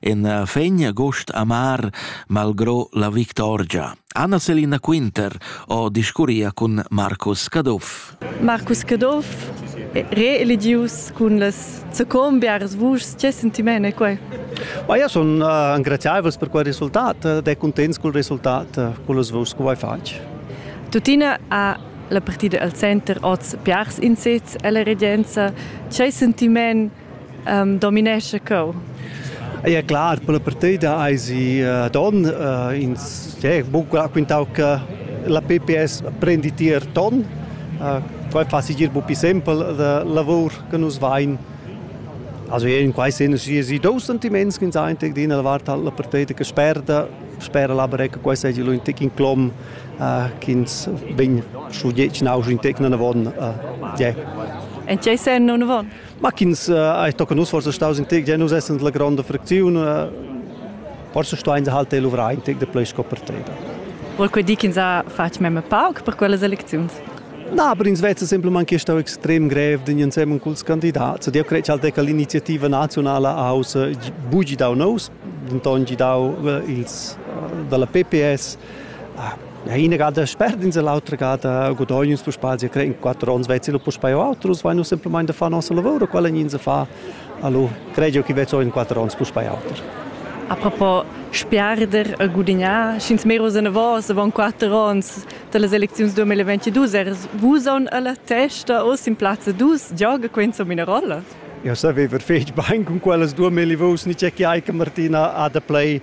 en eh, fegn agost amar malgro la victorgia. Anna Selina Quinter ho discurria cun Marcus Caduff. Marcus Caduff reeligius cun las zecombiaras vuschs, che sentimene quei? Ma io sono uh, ingraziaevels per quel risultat ed è contents col risultat, uh, con las vuschs che vuoi fatg. Tutina ha la partida al center oz piars insets alla regenza. C'è sentiment dominescha cheu. Ja clar, per la partida eisi uh, ton uh, ins eh, buca quintau che la PPS prendi tier ton. Uh, quei fa sigir bupi sempel la lavur che nus vein. Also in quei sen si si dos sentiments che sein tec din la vart alla partida che sperda spera la breca quei sei lu in tec in clom uh, ch'ins vegn su dieci nau in tec non avon uh, yeah. En tgei sen non avon? Ma ch'ins ei tocca nus forsa staus in tec, ja nus essend la gronda fracziun, forse stuein se halt luvrar in tec de plei sco per teda. Vuol quei dir ch'ins ha fatg mem pauc per quellas elecziuns? Na, aber ins vezza semplem che stau extrem grev din insemmen culs candidats. Eu cred halt che l'iniziativa nazionala ha haus bugi dau nous, denton gi dau ils dalla PPS Na ina gada sperdins e l'autra gada gudognus puspei sia cre in quatter onns vezzi lu puspei o auter us vein nus semplamain da far nossa lavur quella nin se fa allo credio chi vezzo in quatter onns puspei auter Apropos sperder e gudignar, sch'ins meros enavos avon quatter onns dallas elecziuns 2022, er vusan alla testa o sin plazza dus gioga quenza mina rolla? Ja savever fetg bein cun quellas duemila vuschs, ni c'è che Eike Martina ha da play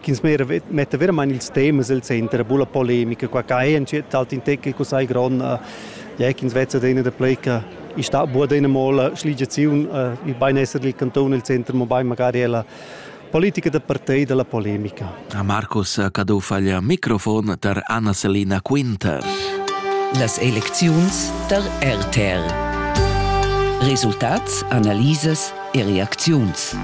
ch'ins metta veramain ils temas el center, bulla polemica, qua ca è entschet alt in teckel co sai gron, ja ch'ins vezza dena da pleca, i sta bu adina mola schligiaziun, il beinesser dil canton el center, mobein magari ella politica da partei dalla polemica. A Marcus Cadou faglia microfon tar Anna-Selina Quinter. Las elecziuns tar RTR. Resultats, analisas e reacziuns.